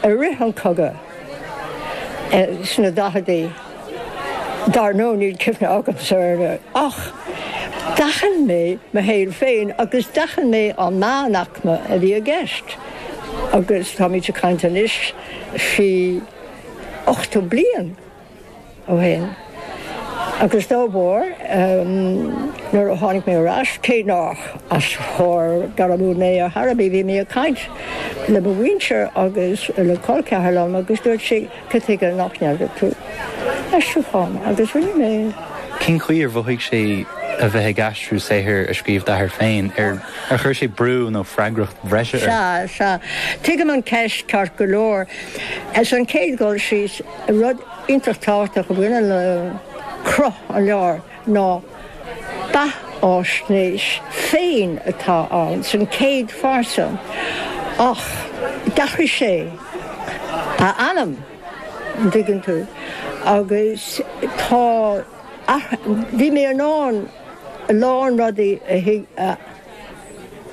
I rith an cogadh sna daicheadaí, dar ndóigh níl cuimhne agamsa air, ach d'aithin mé mo shaol féin agus d'aithin mé an meánaicme a bhí i gceist. Agus tá muid ag caint anois faoi ochtó bliain. ó shin. Agus dá bharr, nuair a tháinig mé ar ais, cé nách aistritheoir gairmiúil mé ar chor ar bith, bhí mé ag caint le mo mhuintir agus le col ceathar liom agus dúirt sí, cad chuige nách ndearna tú aistriúchán? Agus rinne mé. Cén chaoi ar mhothaigh sé a bheith ag aistriú saothar a scríobh d'athair féin? Ar chuir sé brú nó freagracht bhreise ort? Sea, sea. Tuigim an cheist ceart go leor. Sa chéad dul síos, Rud iontach tábhachtach a bhaineann le cruth an leabhair ná beathfháisnéis féin atá ann, san céad phearsa, ach d'athraigh sé a ainm, an dtuigeann tú, agus tá athruithe, bhí mé in ann a lán rudaí a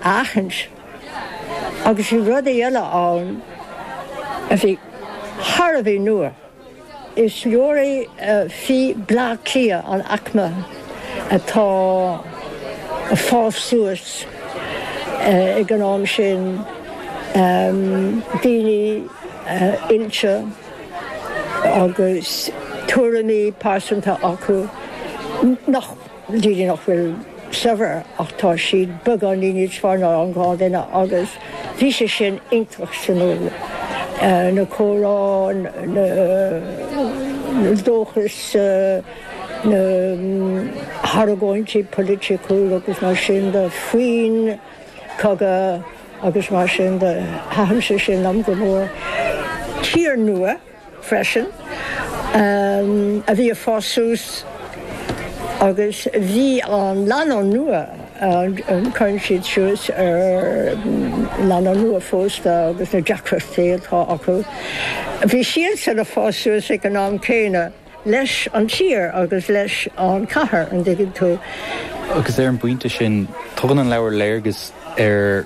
aithint. Agus bhí rudaí eile ann a bhí thar a bhí nua. Is léiriú é faoi Bhleá Cliath, an aicme atá ag fás suas ag an am sin, daoine oilte agus tuairimí pearsanta acu nach. daoine nach bhfuil saibhir ach tá siad beagáinín níos fearr ná an gnáthdhuine agus bhí sé sin iontach suimiúil, na comhrá, na dóchais, na hargóintí poiliticiúla agus mar sin de faoin cogadh agus mar sin de. Thaitin sé sin liom go mór. Tír nua freisin, a bhí ag fás suas agus bhí an lánúin nua, cuireann sé síos ar lánúin nuaphósta agus na deacrachtaí atá acu, bhí siadsan ag fás suas ag an am céanna leis an tír agus leis an chathair, an dtuigeann tú. Agus ar an bpointe sin, tugann an leabhar léargas ar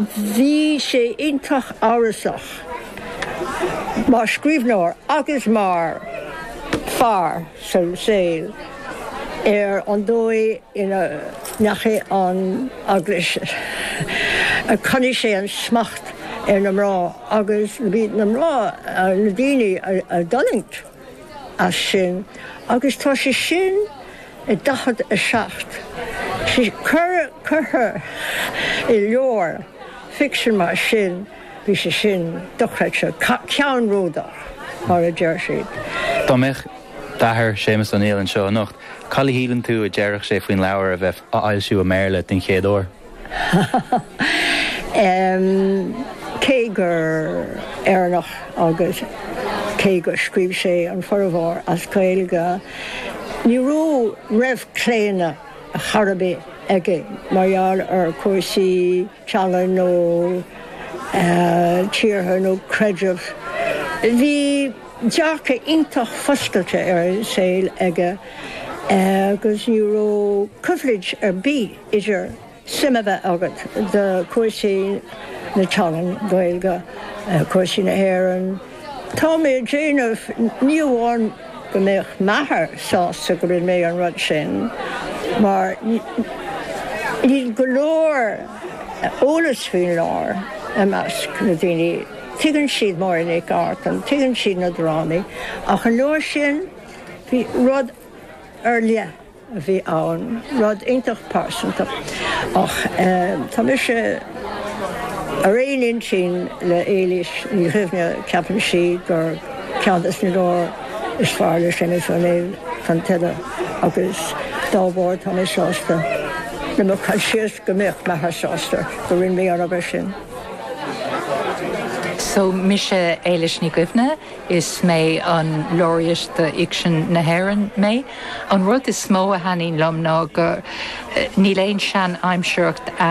Bhí sé iontach amhrasach mar scríbhneoir agus mar fear sa saol ar an dóigh ina ndeachaigh an Eaglais, a choinnigh sé an smacht ar na mná agus ba iad na mná na daoine a d'fhulaing. as sin agus tá sé sin i 47 sé curtha i leabhar ficsin mar sin bhí sé sin dochreidte, ceannródaíoch mar a deir siad. Dá mbeadh d'athair, Séamus Ó Néill, anseo anocht, cad é a shíleann tú a déarfadh sé faoin leabhar a bheith á fhoilsiú i mBéarla den chéad uair? Cé gur Éireannach agus cé gur scríobh sé an formhór as Gaeilge, ní raibh claonadh chor ar bith aige mar gheall ar chúrsaí teanga nó tíortha nó creidimh. Bhí dearcadh iontach foscailte ar an saol aige agus ní raibh coimhlint ar bith. idir suim a bheith agat do chúrsaí na teangan Gaeilge, cúrsaí na hÉireann. Tá mé ag déanamh, ní amháin go mbeadh m'athair sásta go rinne mé an rud sin, mar níl go leor eolas faoin leabhar i measc na daoine, tuigeann siad Máire Nic Artáin, tuigeann siad na drámaí, ach an leabhar sin, bhí rud ar leith. a bhí ann, rud iontach pearsanta. Ach tá mise ar aon intinn le Éilís Ní Dhuibhne, ceapann sí gur ceann des na leabhair is fearr le Séamus Ó Néill Tonn Tuile agus dá bharr tá mé sásta le mo chur síos go mbeadh m'athair sásta go rinne mé an obair sin. So mise Éilís Ní Dhuibhne. Is mé an Laureate do Fhicsean na hÉireann mé. An rud is mó a thaitníonn liom ná go níl aon sean-aimsearacht ann.